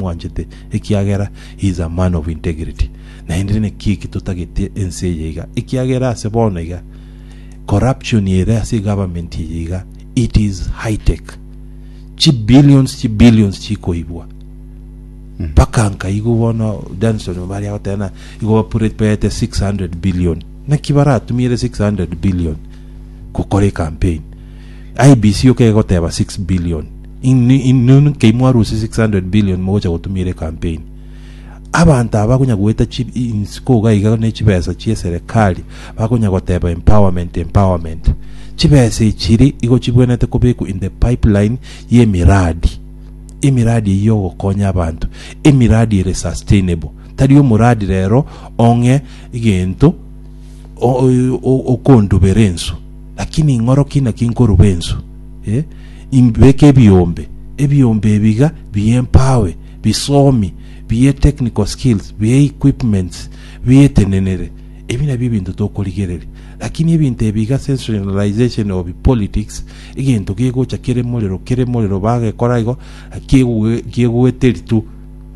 mwanchete, ekiagera he is a man of integrity. Naende naki eki totagete ense eye iga, ekiagera ase bono iga corruption ere ase egovernment eye iga it is high tech. Chi billions chi billions chikoibwa mpaka mm. nkaigo bono Danson bari agotena igo bapurepete 600 billion naki baratumiere 600 billion gokora campaign IBC okegoteba 6 billion Inwe inwe nkei mwarusia 600 billion mogocha gotumia ere campaign abanto aba bakonya goeta chi insiko iga iga ne chibesa chie serikali bakonya goteba empowerment empowerment chibesa ichiri igo chibwenete kobekwa in the pipeline ye miradi emiradi eye yo gokonya abanto emiradi ere sustainable tari omuradi rero ong'e egento o- o- o- okondubera ensu lakini ng'oro kina kinkoruba ensu eh? imbeke ebiombe, ebiombe ebiga bie empawe, bisomi, bie technical skills, bie equipments, bietenenere. Ebi nabio ebinto tokorigereria. Lakini ebinto ebiga sensationalization of politics, egento gegocha kere morero, kere morero bagekora igo, kiegwe- kiegweteri tu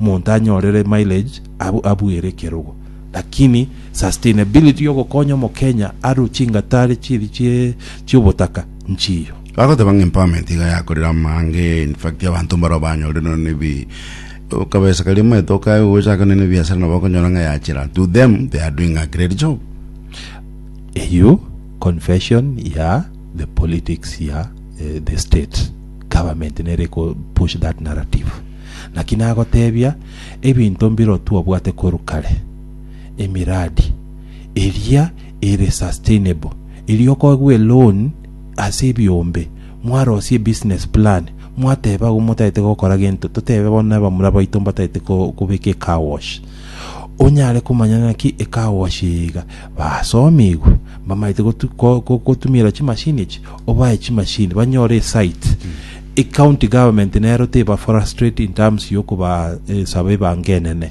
monto anyorere mileage abu- abuere ekerogo. Lakini sustainability yogokonya omokenya aru chingatari chiri chie chiobotaka nchiyo. Bagoteba ng'a empowerment iga yakorire amaange, in fact abanto mbarabwo banyorire nonya ne bi okabesa karia omanyete okae gochaka nonya ne biasara nabo okonyora ng'a yachera to them they are doing a great job. Eyio confession ya the politics ya eh, the state government nere ko push that narrative naki nagotebia ebinto mbiro twabwate koru kare emiradi eria ere sustainable eria okogwa eloan ase ebiombe, mwarosie ebusiness plan, mwateba agwo motagete gokora gento, totebe bono na abamura baito mbatagete ko- kobeka ecar wash, onyare komanya naki ecar wash eye iga, basomigwe, mbamaete gotu- ko- ko- kotumiera chimashini echi, obae chimashini, banyore esite, ecounty government nero teba frustrate in terms yokoba eh, saba ebango enene.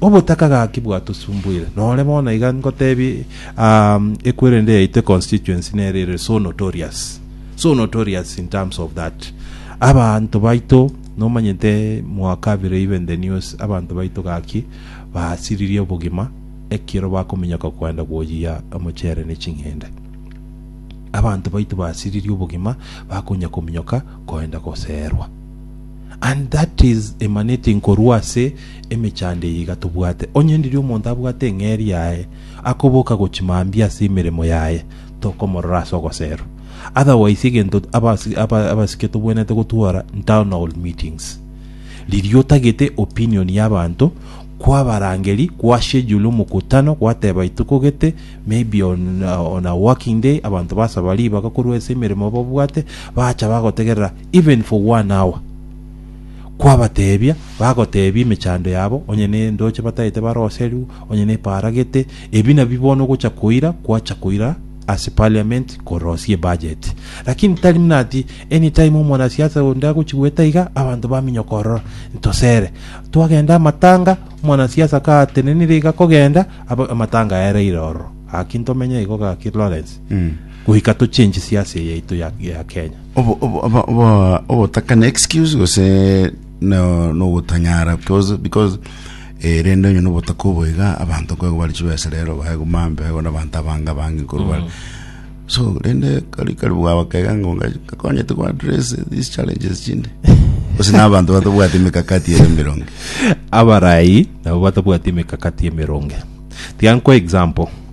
Obotaka gaki bwatosumbuire nore bono iga ngotebie um ekwerende yaito econstituency nere ere so notorious so notorious in terms of that abanto baito nomanyete mwaka bire even the news abanto baito gaki basiririe obogima ekero bakominyoka kwenda gwoyia omochere ne ching'ende abanto baito basiririe obogima bakonya kominyoka koenda goserwa And that is emanating korwa ase emechando eye iga tobwate. Onye ndiri omonto abwate eng'eria yaye, akoboka gochia mambia ase emeremo yaye, tokomorora ase ogoserwa. Otherwise egento abasi- aba- abasike tobwenerete gotwora town hall meetings. Riria otagete opinion ya abanto, kwabarangeri, kwa schedule omokutano, gwateba ituko gete, maybe on, on a working day, abanto basaba ribaga korwa ase emeremo babwate, bacha bagotegerera even for one hour, kwabateebia, bagoteebia emechando yabo, onye nendoche bataete baroserwe, onye neparagete, ebi nabi bono gocha koira, kwacha koira ase parliament korosia ebudget. Lakini tari muna ati anytime omwanasiasa onde agochi goeta iga, abanto baminyoka ororo, ntosere. Twagenda amatanga, omwanasiasa katenenire iga kogenda, aba- amatanga aereire ororo. Gaki ntomenye igo gaki Lawrence. goika tochenche siasa eye yaito ya ya Kenya. Obo- obo- obo- obo- ogotakana excuse gose no- nogotanyara because because eh, rende onye nobotaka oboiga abanto kwego bari chibesa rero baego mambe baego nabanto abange abange koru bare so rende kari kari bwabakega ngo kakonyete kwa address these challenges chinde gose nabanto batobwate emekakati ere mirongo abarai nabo batabwati emekakati emeronge tiga nkwa example